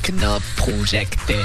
Tecnoprojecte.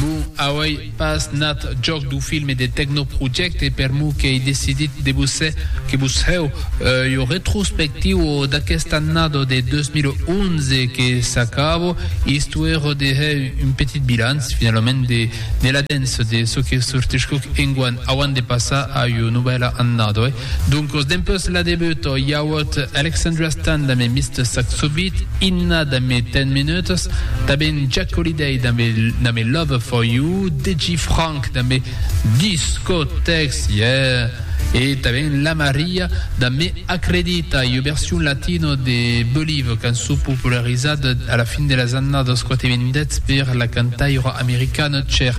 Bon, auei pas nat jòc dau filme de Tecnoprojecte per mo qu'ei decidit de vos hèr que vos hèu ua retrospectiua d'aquesta annada de 2011 que s'acaba, istoèra de hèr un petit bilanç, finalament, de la dens de çò que sortiscuc enguan, auant de passar a ua novèla annada. Doncos dempus la debuta i auot Alexandria Stan damb e Mister Sax Subit, Inna damb e Ten Minutes, tanben Jack Holiday damb e damb e Lover For You, Deji Franck damb e Discotex, yeah, e tanben La Maria damb e Acredita i ua version latino de Believe, cançon popularizada a la fin de las annadas 90 per la cantaira americana Cher.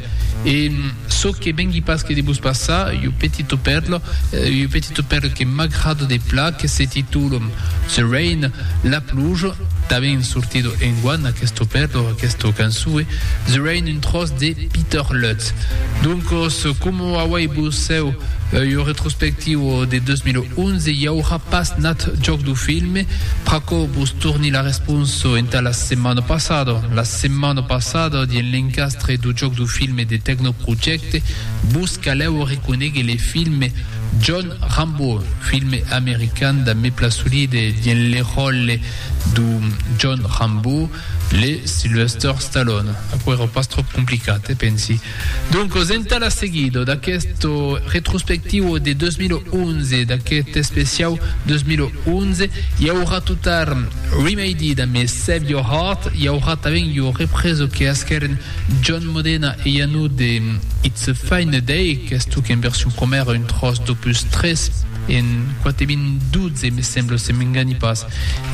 E Çò que vengui pas que de vos passar, iu petito perlo, iu petito perlo que m'agrada de pla, que se titula The Rain, La Pluja, tanben sortido enguan aquesto perlo, aquesta cançoe, The Rain, un tròç de Peter Lutz. Doncos, coma auei vos cèu iu retrospectiu de 2011, i aurà pas nat jòc du filme, pr'aquò vos torni la responsa entà la setmana passada, la setmana passada, dien l'encas, Tre do jòc do filme de Tecnoprojecte, vos calèu arreconéguer le filme John Rambo, filme american damb me Plasolide dins le ròle do John Rambo, le Sylvester Stallone. Aquerò pas tròp complicat, eh? Pensi. Doncos, entà la seguida d'aquest retrospectivo de 2011, d'aqueth especiau 2011, i aurà totar Remedy damb Save Your Heart, i aurà tanben ua represa que asquèren John Modena e Iannou de It's a Fine Day, qu'es tòc en version promèra un tròç d'Opus 3 en 4012 me sembla se m'enganhi pas,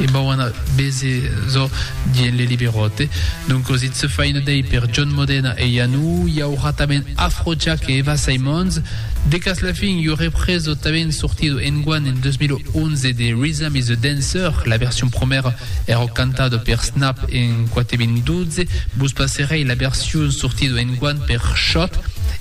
e bau ana veser çò d'i en Le Liberote. Doncas It's a Fine Day per John Modena e Iannou, i aurà tanben Afrojack e Eva Simons, De cas la fin, jo represo tanben sortido enguan en 2011 de Rhythm is a Dancer, la version promèra èra cantada per Snap en 4.12, vos passerèi la version sortido enguan per Shot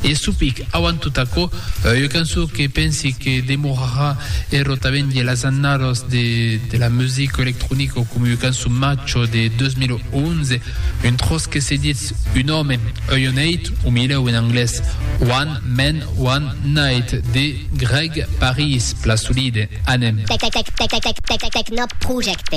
e Supic avant tot aquò, ua cançon que pensi que demorarà ero tanben de las annalas de la musica electronica coma ua cançon macho de 2011, un tròç que se ditz un òme, Ion Eight, o milèu en anglés, One. Men one night de Greg Paris, pla solide, anem. Tecnoprojecte.